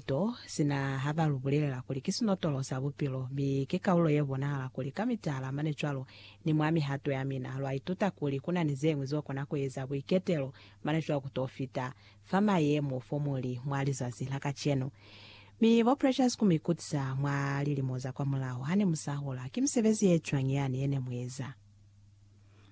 to, sina ha ba lu bulelela kuli ki sinotolo sa bupilo, mi ki kaulo ye bonahala kuli ka mitala mane cwalo, ni mwa mihato ya mina, lwa ituta kuli ku na ni ze ñwi zo kona ku eza buiketelo mane cwalo ku to fita fa mayemo fo mu li mwa lizazi la kacenu. Mi bo Precious ku mi kutisa mwa lilimo za kwamulaho ha ne mu sa hola, ki misebezi ye cwañi yani ye ne mu eza?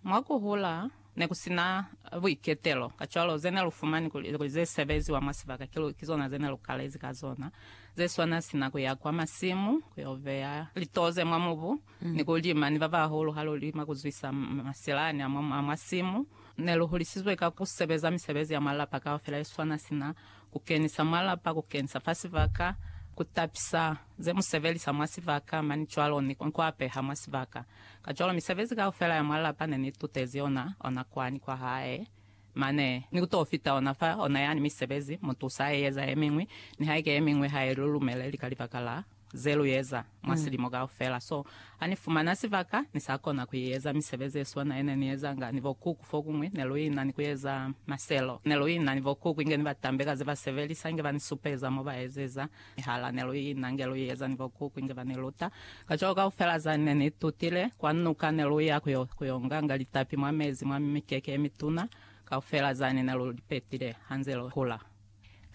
Mwa ku hula, ne ku si na buiketelo, kacwalo ze ne lu fumani kuli ze sebeziwa mwa sibaka kiluhi ki zona ze ne lu kalezi ka zona, ze swana sina ku ya kwa masimu ku yo beya litoze mwa mubu ni ku lima ni ba bahulu ha lu lima ku zwisa masilani a mwa simu. Ne lu hulisizwe ka ku sebeza misebezi ya mwa lapa kaufela ye swana sina ku kenisa mwa lapa, ku kenisa fa sibaka, ku tapisa ze mu sebelisa mwa sibaka, mani cwalo ni ku apeha mwa sibaka. Kacwalo misebezi kaufela ya mwa lapa ne ni tutezi ona, ona kwani kwa hae. Mane, ni ku t'o fita ona fa, ona yani misebezi, mu tusa a eza ye miñwi, nihaike ye miñwi ha i lu lumeleli ka libaka la ze lu eza mwa silimo kaufela. So, ha ni fumana sibaka, ni sa kona ku eza misebezi ye swana ye ne ni ezanga ni bo Kuku. Fokuñwi, ne lu ina ni ku eza maselo. Ne lu ina ni bo Kuku inge ni ba tambe ka ze ba sebelisa, inge ba ni supeza mo ba ezeza. Nihala ne lu ina nge lu eza ni bokuku inge ba ni luta, kacwalo kaufela za ne ni tutile, kwa nuka ne lu ya ku yo nganga litapi mwa mezi mwa mikeke ye mituna, kaufela zani ne lu li petile ha nze lu hula.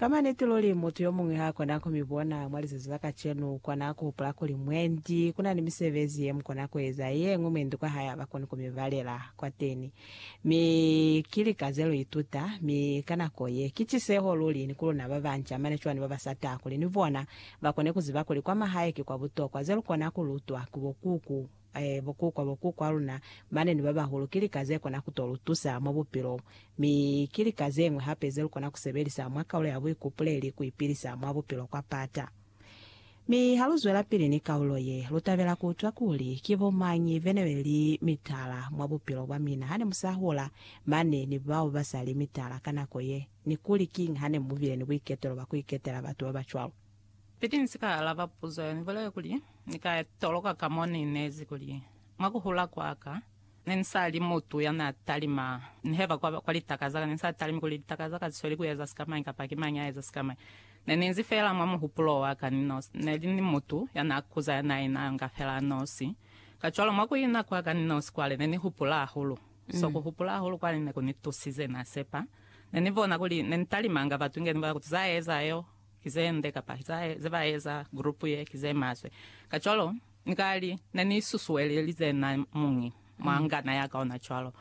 Ka maniti luli, mutu yo muñwi ha kona ku mi bona mwa lizazi la kacenu. U kona ku hupula kuli, Mwendi, ku na ni misebezi ye mu kona ku eza, ye ñwi mwendi kwa hae ha ba koni ku mi balela kwateni. Mi ki lika ze lu ituta, mi ka nako ye, ki tiseho luli ni ku luna ba banca mane cwani ba ba sa taha kuli ni bona ba kone ku ziba kuli kwa mahae ki kwa butokwa. Ze lu kona ku lutwa ki bo kuku, eh, bo kuku, bo kuku a luna mane ni ba bahulu, ki lika ze kona ku to lu tusa mwa bupilo. Mi ki lika ze ñwi hape ze lu kona ku sebelisa mwa kaulo ya buikupuleli ku ipilisa mwa bupilo kwa pata. Mi ha lu zwelapili ni kaulo ye, lu tabela ku utwa kuli ki bo mañi bene be li mitala mwa bupilo bwa mina hane mu sa hola, mane ni bao ba sa li mitala ka nako ye, ni kuli kiñi hane mu bile ni buiketelo bwa ku iketela batu ba ba cwalo. Piti ni si ka alaba puzo ye, ni bulele kuli, Ni ka toloka ka mo ni inezi kuli, Mwa ku hula kwa ka, Ne ni sa li mutu ya n'a talima. Nihe ba kwa, kwa litaka za ka, ne ni sa talimi kuli litaka za ka zisweli ku eza sikamañi kapa ki mañi a eza sikamañi. Ne ni nzi fela mwa muhupulo wa ka ni nosi. Ne li ni mutu ya n'a kuza ya n'a ina nga fela a nosi. Kacwalo, mwa ku ina kwa ka ni nosi kwale, ne ni hupula hahulu. So, ku hupula hahulu kwale ne ku ni tusize, n'a sepa. Ne ni bona kuli ne ni talimanga batu inge ni bona kuti za eza yo. ki ze nde kapa ze ba eza group ye ki ze maswe. Kacwalo, ni ka li, Ne ni susuelelize na muñi mwa ngana ya ka ona cwalo.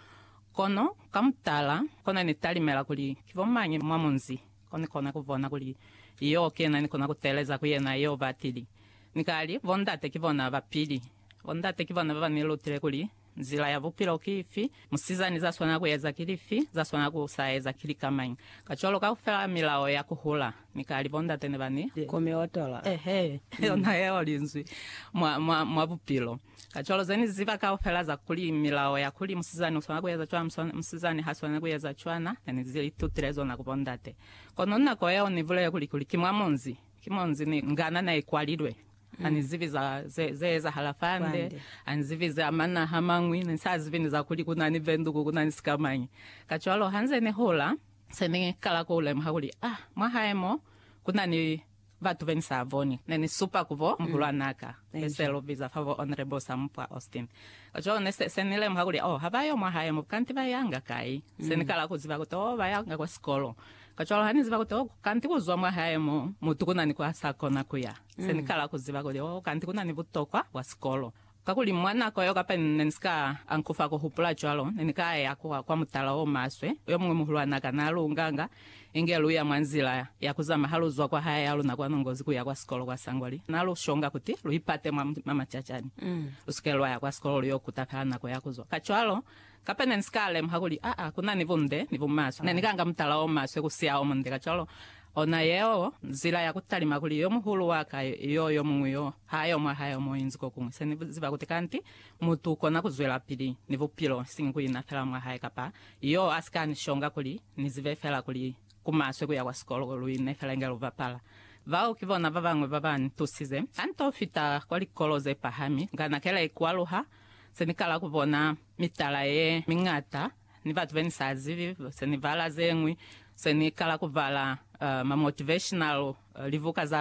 Kono, ka mutala, kona ni talimela kuli ki bo mañi mwa munzi ko ni kona ku bona kuli yo kena ni kona ku teeleza ku yena yo ba tili. Ni ka li, Bondate ki bona ba pili. Bondate ki bona ba ba ni lutile kuli Nzila ya bupilo ki ifi? Musizani za swanela ku eza ki lifi? Za swanela ku sa eza ki lika mañi? Kacwalo kaufela milao ya ku hula ni ka li bo ndate ne ba ni. Ku mi otola. Ehe, yona yeo linzwi mwa, mwa, mwa bupilo. Kacwalo ze ni ziba kaufela za kuli milao ya kuli musizani u swanela ku eza cwana, musizani ha swaneli ku eza cwana, ne ni li tutile zona ku bo ndate. Kono nako yeo ni bulele kuli, kuli ki mwa munzi, ki munzi ni ngana ne ikwalilwe. Ha ni zibi za ze, ze ezahala fande, ha ni zibi za manaha mañwi, ni sa zibi ni za kuli ku na ni benduku, ku na ni sikamañi. Kacwalo ha nze ni hola, se ni kala ku lemuha kuli, ah, mwa hae mo, ku na ni batu be ni sa boni. Ne ni supa ku bo muhulwan'a ka, be se lu biza fa bo Honorable Sampwa Austin. Kacwalo ne se, se ni lemuha kuli, oh, ha ba yo mwa hae mo, kanti ba yanga kai? Se ni kala ku ziba kuti, oh, ba yanga kwa sikolo. Kacwalo ha ni ziba kuti, oh, kanti ku zwa mwa hae mo, mutu ku na ni kwa sa kona ku ya. Se ni kala ku ziba kuli, oh, kanti ku na ni butokwa bwa sikolo. Kakuli mwa nako yeo kapa ne ni si ka ankufa ku hupula cwalo, ne ni ka ya kwa, kwa mutala o maswe, yo muñwi muhulwan'a ka na lu nganga, inge lu ya mwa nzila ya ku zama ha lu zwa kwa hae ya luna kwa Nongozi ku ya kwa sikolo kwa Sangwali. Na lu shonga kuti lu ipate mwa, mwa macacani. Lu si ke lwa ya kwa sikolo lu yo kuta fela nako ya ku zwa. Kacwalo, Kapa ne ni si ka lemuha kuli aa ku na ni bunde ni bumaswe, ne ni ka nga mutala o maswe ku siya o munde. Kacwalo, ona yeo nzila ya ku talima kuli yo muhulu wa ka yo yo muñwi yo ha yo mwa hae o mo inzi ko kuñwi. Se ni ziba kuti kanti mutu u kona ku zwelapili ni bupilo, isiñi ku ina fela mwa hae kapa yo a si ka ni shonga kuli ni zibe fela kuli ku maswe ku ya kwa sikolo, lu ine fela inge lu bapala. Bao ki bona ba bañwi ba ba ni tusize. Ha ni to fita kwa likolo ze pahami, nga na kela ikwaluha Se ni kala ku bona mitala ye miñata ni batu be ni sa zibi. Se ni bala ze ñwi, se ni kala ku bala ma motivational libuka za